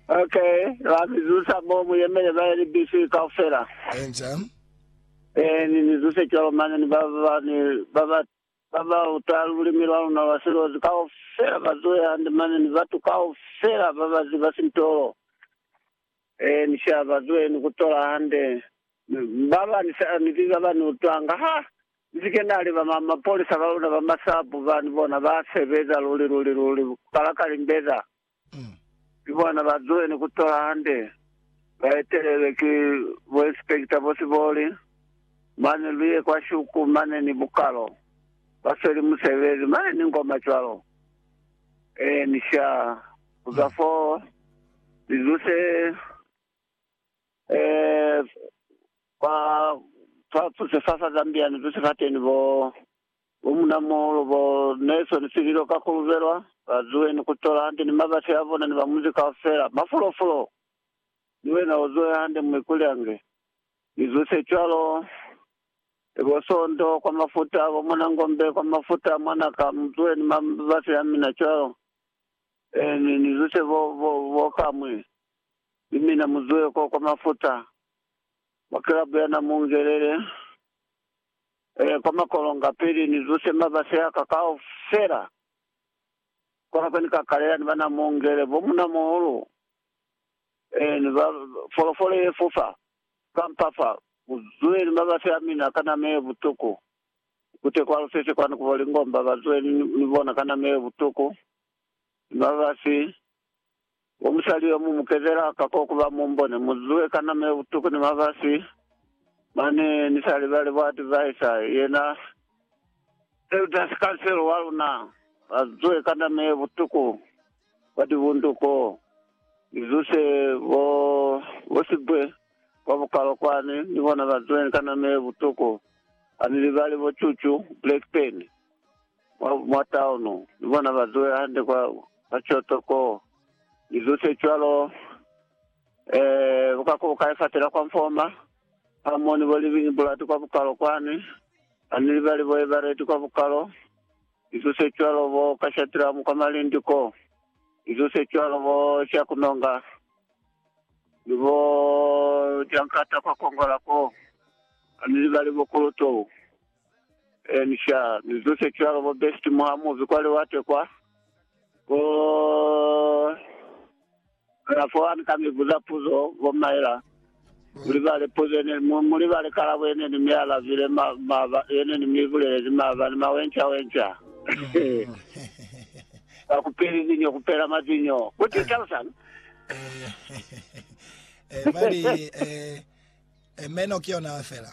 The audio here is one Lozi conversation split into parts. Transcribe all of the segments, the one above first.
Okay, ba mi zusa mo mu yemele ba ye libisi kaufela. Enca. Eh, ni ni zuse cwalo mane ni ba ba ba ni ba ba ba ba uta lulimi lwa luna lwa silozi kaufela ba zuhe hande mane ni batu kaufela ba ba ziba sintolo. Ee, ni sha ba zwe ni ku tola hande. Ba ba ni sa ni biba ba ni utwanga. Ha ni si ke na li ba ma, mapolisa ba luna ba masapu ba, ni bona ba sebeza luli, luli, luli, ku kala ka limbeza. Ni bona ba zwe ni ku tola hande. Ba etelelwe ki bo inspector bo siboli. Mane lu ye kwa shuku mane ni bukalo. Ba sweli musebezi. Mane ni ngoma cwalo. Ee, ni sha ku za fo ni zuse eh, kwa, fa zuse fa fa Zambia, ni zuse fateni bo, bo Munamuhulu, bo Nelson Sililo ka ku lubelwa, ba zuwe ni ku tola hande ni mabasi a bona ni ba munzi kaufela, mafulo-fulo. Ni wena o zuwe hande, Muikulyange. Ni zuse cwalo. Ni bo Sondo kwa mafuta, bo mwana Ngombe kwa mafuta, mwana ka mutwe ni mabasi ya mina cwalo. Ee, ni, ni zuse bo, bo, bo kamwe. Ni mina muzwe ko kwa mafuta, mwa kilabu ya Namungelele. Ee, kwa makolonga, pili ni zuse mabasi a ka kaufela. Kona kwe ni ka kalela ni ba Namungele, bo munamuhulu. Ee, ba, folofolo ye fofa ka mpa fa, ku zweli mabasi a mina ka nama ye butuku, kute kwa lusese kwani ku bo Lingomba, ba zweli ni, ni bona ka nama ye butuku, ni mabasi. Wo musali yo, mu mu kezela ka ko ku ba mu mbone, mu zwe ka nama ye butuku ni mabasi. Mane, ni sa libali bo adviser, yena elders council wa luna, ba zwe ka nama ye butuku. kwa tibundu ko ni zuse bo bo sibwe kwa bukalo kwani ni bona ba zweng ka nama ye butuku ha ni libali bo cucu black pen mwa mwa town ni bona ba zwe hande kwa kwa choto ko ni zuse cwalo eh bukako bukai fatela kwa mfoma ha moni bo living bulati kwa bukalo kwani ha ni libali bo ebareti kwa bukalo Izo se cwalo bo ka Shadramu kwa malindi ko, izo se cwalo bo sha ku nonga, ni bo jankata kwa kongola ko, ha ni libali bo kulutou, eeni sha, ni zo se cwalo bo besti muha mubi kwa liwate kwa, bo. Kalafo ani ka mi buza puzo, bo Myra. Mu libale puzo ye ne, mu, mu libale kalabo ye ne ni mi alabile, ma, maba, ye ne ni mi bulelezi maabani, mawenca wenca. Ka ku peli zinyo, ku pela mazinyo. Ku ti talusani? Eh, eh, ba li, eh, eh, meno ki yona fela.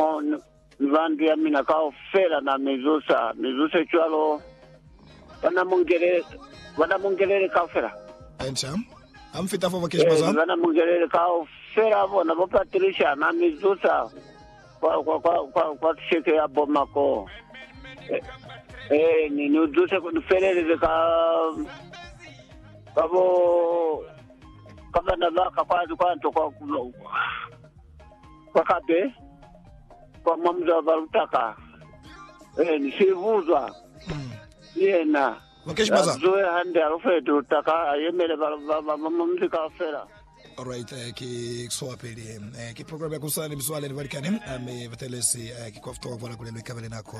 Hamo ni ba ndu ya mina kaufela na mi zusa, mi zuse cwalo bana Mungelele kaufela. Ee, ni bana Mungelele kaufela bona bo Patricia na mi zusa kwa kisheke ya bo Mako. Ee, ni ni zuse ku ni feleleze ka ka bo, ka bana baka kwa nto kwa. Kwa kape, kwa mwa muzwa ba lutaka, Eni Sibuzwa, ki yena ya zuwe hande a lufetu lutaka, a yemele ba ba mwa muzi kaufela. Alright, eh, ki kusowa pili eh, ki program ya kusana ni mizwale ni balikani ami batelezi eh, ki kwa futowa bwala kulelo ikabele nako